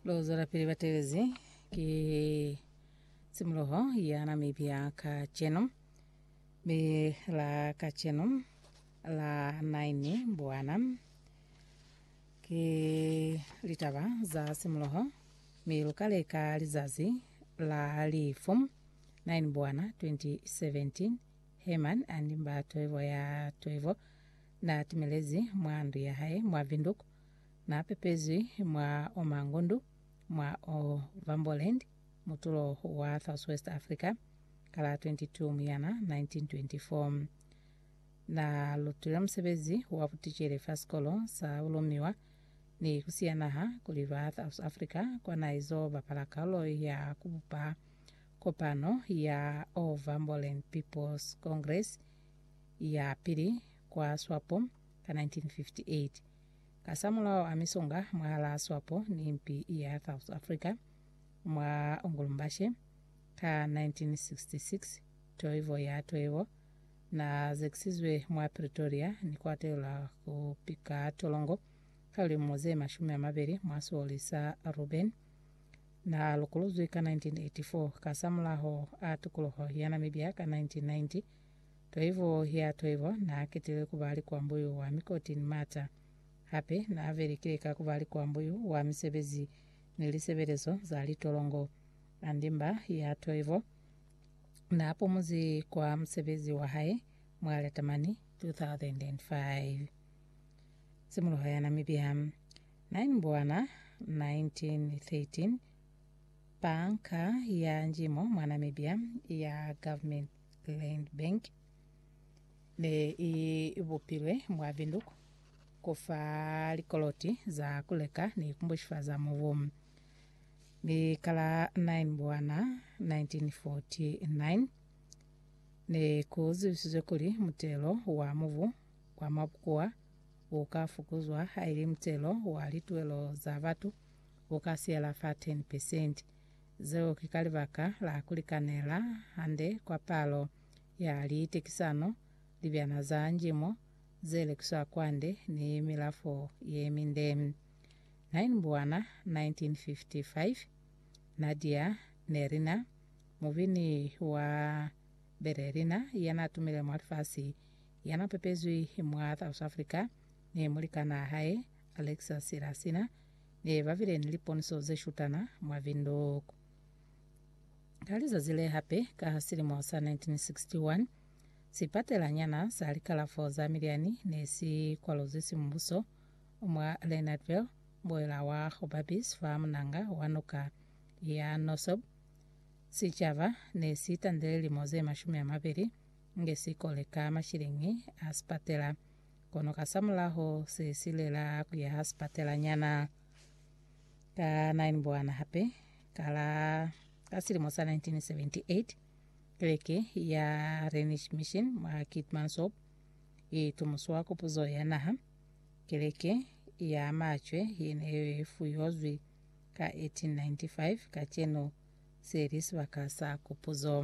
Lo zwelapili ba telezi ki tshimoloho ya Namibia kacenu. Be la kacenu la 9 Mbwana ki litaba za tshimoloho mi lu ka leka lizazi la lifu 9 Mbwana 2017 Herman and Mba Toivo ya Toivo Na timelezi mwa ndu ya hae mwa Windhoek, na pepezwi mwa Omangundu, mwa Ovamboland, mutulo wa Southwest Africa, ka la 22 Muyana 1924. Na lutile musebezi wa buticele fa sikolo sa bulumiwa ni ku siya naha kuli ba South Africa kwa na izo bapala kaulo ya ku bupa kopano ya Ovamboland People's Congress, ya pili kwa Swapo ka 1958. Kasamulaho a misonga mwahalaa Swapo ni mpi ya South Africa mwa Ongolumbashe ka 1966, Toivo ya Toivo na zekisizwe mwa Pretoria ni ku atelelwa ku pika tolongo ka lilimo ze mashumi a mabeli mwa sioli sa Ruben. Na lokolozwi ka 1984. Kasamulaho a tukuluho ya Namibia ka 1990, Toivo ya Toivo naaketilwe kuba likwambuyu wa mikoti ni mata. Hape naavelikile ka kuba likwambuyu wa misebezi ni lisebelezo za litolongo. Andimba ya Toivo naapumuzi kwa musebezi wahae mwa Latamani 2005. Tshimoloho ya Namibia 9 Mbwana 1913 Banka ya Njimo mwa Namibia ya Government. Land Bank ne i bupilwe mwa Windhoek ku fa likoloti za ku leka ni ku bushifaza mubu. Mi ka la 9 Mbwana 1949, ne ku zibisizwe kuli mutelo wa mubu wa mwa bukuwa u ka fukuzwa haili mutelo wa lituwelo za batu u ka siyela fa 10 pesenti. Zeo ki ka libaka la ku likanela hande kwa palo ya liitekisano, libyana za njimo ze lekiswa kwande ni milafo ye minde. Nainbuwana 1955, Nadia Nerina, mubini wa Berelina ya na tumile mwa lifasi, ya na pepezwi mwa South Africa ni mulikanaa hae Alexis Lassina, Ee, ba bile ni liponiso ze shutana mwa Windhoek. Ka lizazi le hape ka silimo sa 1961, sipatelanyana sa likalafo za milyani ne si kwaluzwi simubuso mwa Leonardville, mbuela wa Hobabis fa munanga wa nuka ya Nosob. Sicaba ne si tandile lilimo ze mashumi a mabeli nge sikole ka mashilingi a sipatela. kono kasamulaho se silela ku ya ha sipatelanyana. Ka 9 Mbwana hape, ka la ka silimo sa 1978, keleke ya Rhenish Mission mwa Keetmanshoop i tumuswa ku puzo ya naha. Keleke ya macwe ye ne i fuyozwi ka 1895, kacenu se li sibaka sa kupuzo.